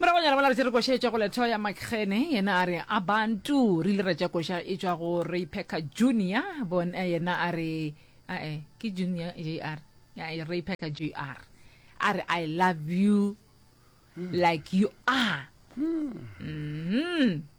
Moragonyana mola re se re koša e tšwa go Letho ya Makgene, yena a re Abantu. Re ile ra tša koša e tšwa go Ray Packer Junior, bon, eh, yena a re ae ke Junior JR, ae Ray Packer JR a re I love you like you are. Mm.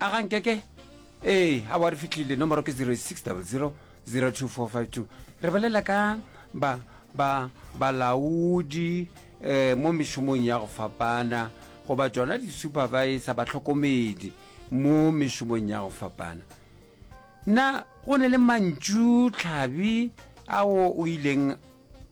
a ga nkeke ee a wa re fitlhile nomoro ke 06000242 re bolela ka ba ba balaodi um mo mešomong ya go fapana goba tsona di-supervisor batlhokomedi mo mešomong ya go fapana na go ne le mantšu tlhabi ao o ileng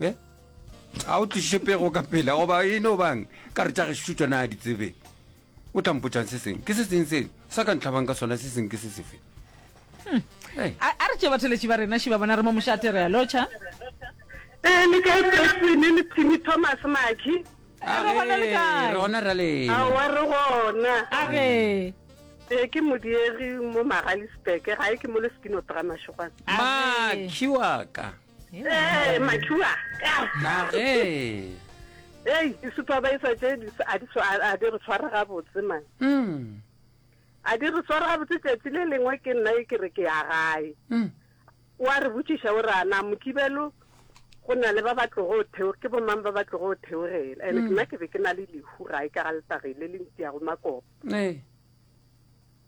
e a o tliše pego ka pela goba e no bang ka re tša gešo tšona a di tsebe o tlampotsang se seng ke se seng se sa ka ntlhabang ka sona se seng ke se sefe hmm. a re tše batheletši ba rena šiba bona re mo mošate re a lotšha ee le kae presine le timi thomas maki ah, re gona le kae re gona ra lena awa re gona a re ee ke modiegi mo magalisbeke ga e ke mo le spinotrama šogwana makhi wa ka Ee, mathua. Nage. Ei, di-supervisor tše di s- a di tshwa- a- a di re tshwara gabotse man Mm. a di re tshwara gabotse tšatši le lengwe ke nna e ke re ke ya gae Mm. wa re botšiša o rana mokibelo go na le ba ba tlogo theo ke bomang ba ba tlogo theogela and nna ke be ke na le lehu gae ka ga letagi le le ntiyago makopo Ee.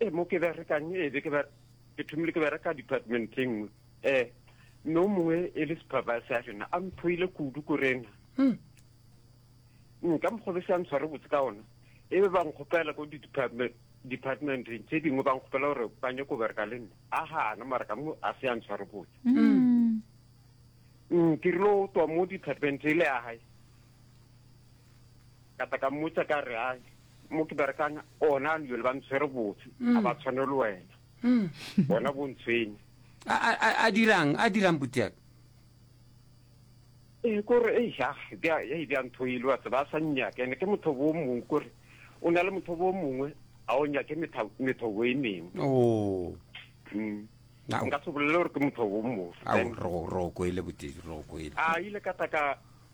e mo ke berekang e be ke thomile ke bereka department e nngwe um mme o mongwe e le supervisor ya rena a mphoile kudu ko rena hmm. hmm, ka mokgwa be se a ntshware botse ka ona e be ba nkgopela ko departmenteng tse dingwe ba nkgopela gore ba nyako ko bereka le nna a gana mara ka mo a se a ntshware botse hmm. ke rile o tswa mo department e le ya gae ka tla ka mmotsa ka re a mo ke berekang ona ano jale ba ntshwere botse mm. a ba tshwane le wena mm. bona bo ntshwene a dirang a dirang butiaka ee eh, kore e ja e bja ntho e le wa tseba a sa nnyake ene ke motho bo mongwe kore o na le motho bo mongwe a o nyake methobo e mengwe oh. mm. nka se bolele gore ke motho bo mongwe roko ele botedi roko ele a ile ka tla ka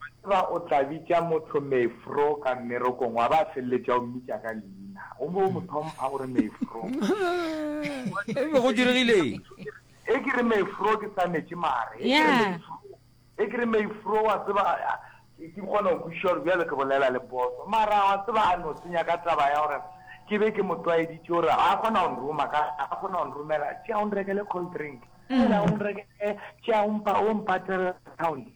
Wa tseba o tla bitša motho Meefro ka mmerekong wa ba a feleletša o mmitša ka leina. O be o mo thompha gore Meefro. E be go diregileng? E ke re Meefro ke sa metše mare. E ke re Meefro. E ke re Meefro wa tseba ke kgona go kwešiša gore bjale ke bolela le boso. Mara wa tseba a no senya ka taba ya gore ke be ke mo tlwaeditše gore a kgona go nroma ka a kgona go nromela tšea o nrekele cold drink. Tšea o nrekele tšea o mpa o mpatlela account.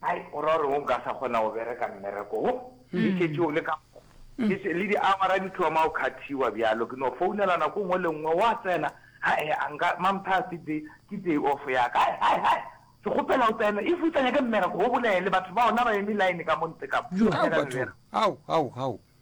Hai, o ra gore o nka sa kgona go bereka mmereko wo, ke šetše o le ka mo, ke še, le diawara di thoma go khathiwa bjalo, ke no founela nako nngwe le nngwe, wa tsena, hai, a nka, Mampha, ke day, ke day off ya ka, hai, hai, hai, ke kgopela o tsene, if o sa nyake mmereko, o bolele, batho ba ona ba eme line ka mo ntle ka mo, o nyaka mmereko. Hau, hau, hau, hau,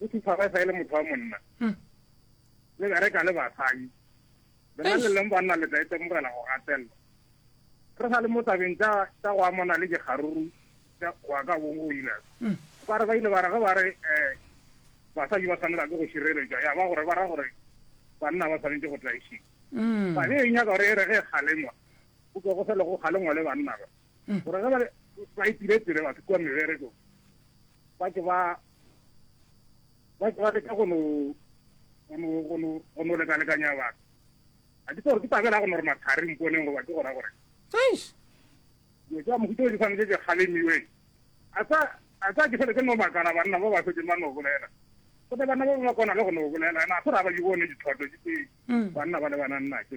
o se tshwara e sa e le motho wa monna hmm. le bereka le basadi lena le leng banna le tla itemogela go gatelelwa re sa le mo tabeng tsa go amana le dikgaruru tsa go ya ka bong go ile hmm. ba re ba ile ba re ge ba re um basadi ba tshwanela ke go šireletšwa ya ba gore ba ra gore banna ba tshwanetse go tlaišiwa hmm. ba be e nyaka gore e re ge kgalengwa go tswa go fele go kgalengwa le banna ba gore ge ba itire tire batho kua meberekong ba ke ba ba ba leka go no go no go no go no leka leka nya ba a di tsoro ke tabela go no re mathari mponeng go ba ke gona gore eish yo ja mo gutse di fane je khale mi we a sa a sa ke fele ke no makala banna ba ba se ke mano bolela go ne banna ba ba kona le go no bolela na go ra ba di bone di thoto di ke mm. banna ba le bana nna ke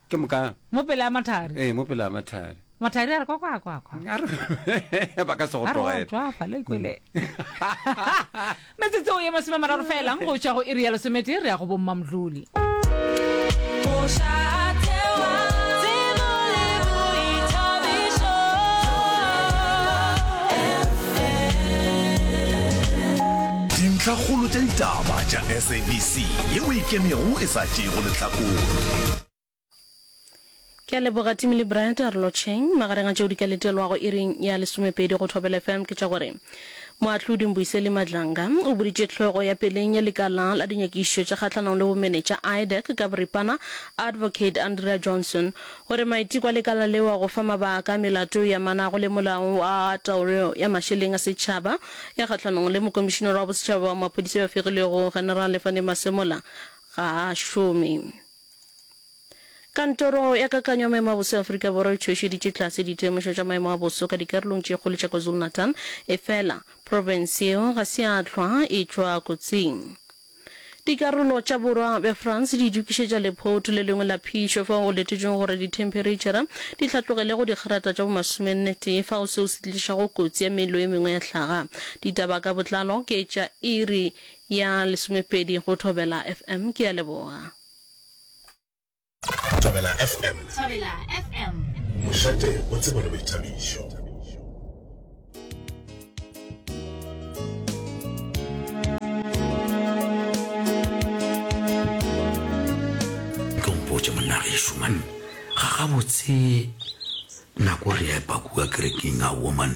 Ke moka. Mo pele a mathari. Ee, mo pele a mathari. Mathari a re kwa kwa kwa kwa. A re ba ka se go tlogela. A re tswa fa le kwele. Metsotso ya masome mararo fela go tšwa go iri ya lesomete re ya go bomma mdluli. Dintlhakgolo tša ditaba tša SABC yeo e kemego e sa tšewe. go lehlakore. Ke a leboga Timmy le Brad a re lotšheng. Magareng a tšeo di ka letelwago iring ya lesomepedi go Thobela FM ke tša gore Moahlodi Mbuyiseli Madlanga o boditše hlogo ya peleng ya lekala la dinyakišišo tša kgahlanong le bomenetša, IDEC, ka boripana, Advocate Andrea Johnson, gore maiteko a lekala leo a go fa mabaka a melato e amanago le molao wa taolo ya mašeleng a setšhaba ya kgahlanong le Mokomišinara wa Bosetšhaba wa Maphodisa yo a fegilwego, Generale Fannie Masemola, ga a šome. Kantoro ya Kakanyo ya Maemo a Boso ya Afrika Borwa e tšhošeditše tlase ditemošo tša maemo a boso ka dikarolong tše kgolo tša KwaZulu-Natal, efela profense yeo ga se ya hlwa e tšwa kotsing. Dikarolo tša borwa bja France di itokišetša lephoutu le lengwe la phišo fao go letetšwego gore dithemphereitšhara di hlatlogele go digerata tša bo masomennetee fao seo se tlišago kotsi ya mello e mengwe ya hlaga. Ditaba ka botlalo ke tša iri Ya lesomepedi go Thobela FM. Ke a leboga. Thobela FM. Thobela FM. Mošate o tsebo le boithabišo. mpotše monna geso man ga gabotse nako re epa kua kerekeng a woman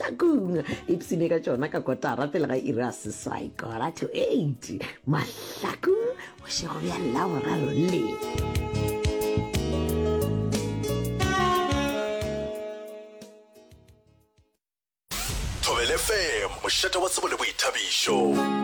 nakong ipsene ka tšona ka kotara pele ga iri a seswai kora to eight mahlakong bošego bja laboraro le thobelefm mošate wa tsebo le boithabišo